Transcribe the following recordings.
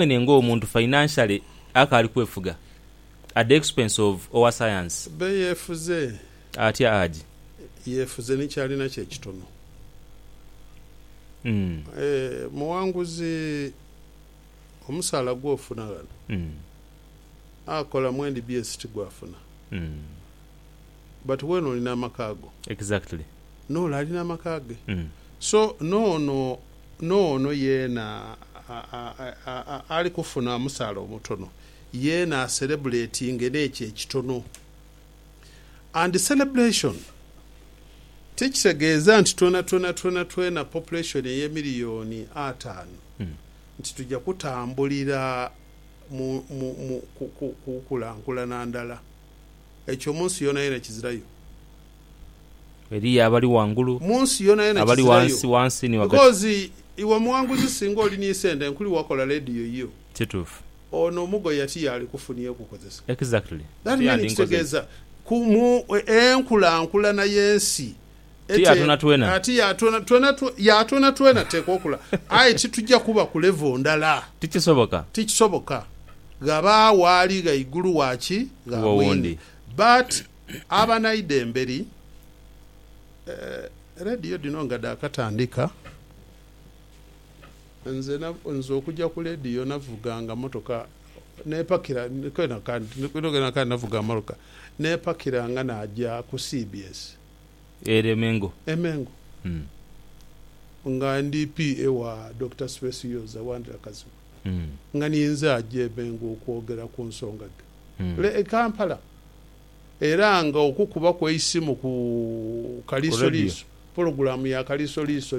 Mwene nga omuntu financially akaali kwefuga at the expense of owa science. Be yefuze. Atya Haji? Yefuze ni kyalina kye kitono. Eeh Muwanguzi omusaala gwofuna ghano akola mu nbs tigwafuna. but wena olina amaka go. Exactly. N'ole alina amaka ge. So n'ono n'ono yeena ali kufuna omusaala omutono yeena aserebuletinge n'ekyo ekitono. And celebration tikitegeeza nti twenatwena twenatwena population ey'emiliyoni ataanu nti tuja kutambulira mu mu mu ku ku kukulankulana ndala. Ekyo mu nsi yoonayoona kizirayo. Eliyo abali ghangulu, Mu nsi yoonayoona abali kizirayo. ghansi, ghansi ni ghagati. Because iwe muwanguzi singa oli ni sente nkuli wakola radio yo. Kituufu. Ono omugo yati yaali kufunia okukozesa. Exactly. That Nti mean yandinkoze ki? kitegeeza ku mu enkulaankulana y'ensi Ti ya twenatwena. Ti ya twenatwena, ya twenatwena teekwa okula. Aye ti tuja kuba ku level ndala. Ti kisoboka. Ti kisoboka. Ghabaagho ali ghaigulu wa ki? Gha mwine. But abanaidha emberi, eeh, radio dhino nga dha katandika, nze na, nze okuja ku radio navuganga motoka, nepakira, kwenakandi, kwenakandi navuga motoka, nepakiranga naja ku cbs. Ere e Mengo. E Mengo. Nga ndi PA wa Dokita Specioza Wandira Kazibwe. Nga ninze aja e Mengo okwogera ku nsonga dhe re e Kampala. Era nga okukubaku eisimu ku Kaliisoliiso, pologulaamu ya Kaliisoliiso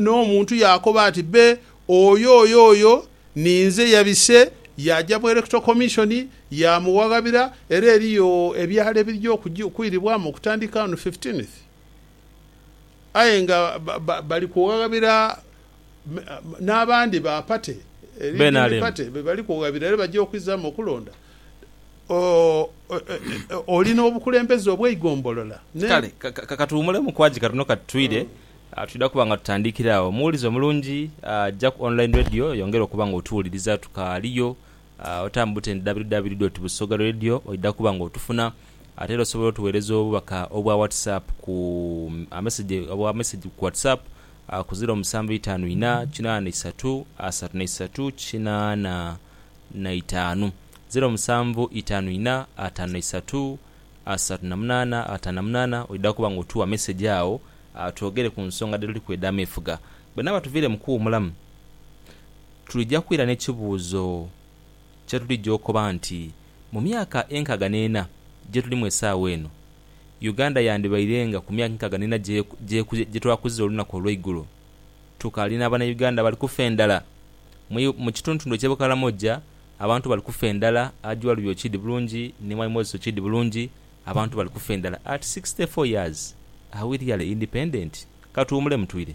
N'omuntu yaakoba ati, Be, oyo, oyo, oyo ninze. Yabise yaaja mu Electoral Commission yaamuwaghabira, era eriyo ebyalo ebirija okwiribwamu okutandika on fifteenth. Aye nga bali kuwaghabira n'abandi ba party, Redeem Party, be bali kuwaghabira era baja okwizaamu okulonda. Oli n'obukulembeze obw'eigombolola ne. Kale ka tuwumulemu Kwagi katono kati twire. Twidha kuba nga tutandiikira agho. Muwulize omulungi, ja ku online radio yongera okuba nga otuwuliriza. Tukaaliyo, otambe butende www doti busoga radio oidha kuba nga otufuna. Ate era osobola otuweereza obubaka obwa WhatsApp ku ameseje, obwa meseji ku WhatsApp ku ziro musanvu itaanu inha kinaana isatu asatu na isatu kinaana. na itaanu, ziro musanvu itaanu inha ataano na isatu asatu na munaana ataano na munaana oidha kuba nga otuwa message agho twogere ku nsonga dhe tuliku edha meefuga. Bwe naaba tuviire mu kuwumulamu tulija kwira n'ekibuuzo kye tulija okoba nti mu myaka enkaaga n'ena gye tulimu esaawa eno, Uganda yandibairenga ku myaka enkaaga n'ena gye twakuzira olunaku olweigulo? Tukaali n'abana Uganda bali kufa endhala. Mu kituntundu eky'e Bukalamoja abantu bali kufa endhala, Ajualubi okiidi bulungi ni Mwai Moses okiidi bulungi, abantu bali kufa endhala at sixty four years, are we really independent? Katuwumulemu twire.